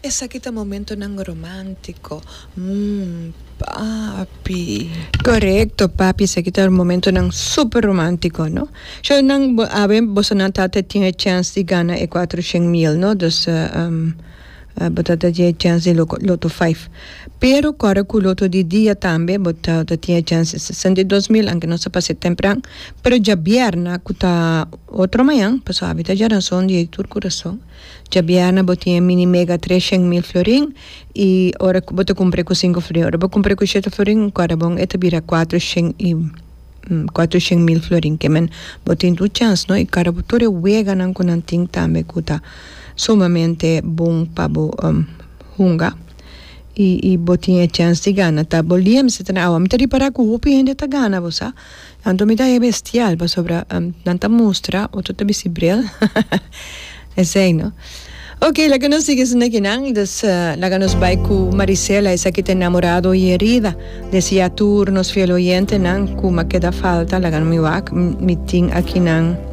Esaki ta momentonan romántico, mm, papi. Corecto, papi, esaki ta momentonan super romántico, no? Sho nan, bo, awe bosonan tata tin e chèns di gana e cuatrocièn mil, no? Dus, um, bo ta ta tin e chèns di loco, loto vijf. Pero kòrda ku loto di dia tambe bo ta ta tin e chèns di sesenta i dos mil, anke nos a pas'é tempran, pero djabièrna ku ta otro mañan, pasobra awe ta djaranson di tur kurason. Djabiana bo tin e mini mega tres shen mil florin y ora cu bo ta cumpre cu cinco florin ora bo cumpre cu shete florin un cuadra bon e ta bira cuatro shen y cuatro shen mil florin que men bo tin dos chance no y cara bo tur e weganan cu nan tin tambe cu ta sumamente bon pa bo hunga y y bo tin e chance di gana ta bo lia meseta na awa mi ta ripara cu hopi hende ta gana bo sa Anto mi ta hei bestial pasobra nan ta mustra otro ta bisti bril esei no ok laga nos sigui esneki nan y des laga nos bai cu Marisela esaki ta enamorado y herida deci ya tur nos fiel oyentenan cu ma keda falta laga mi wak mi tin akinan.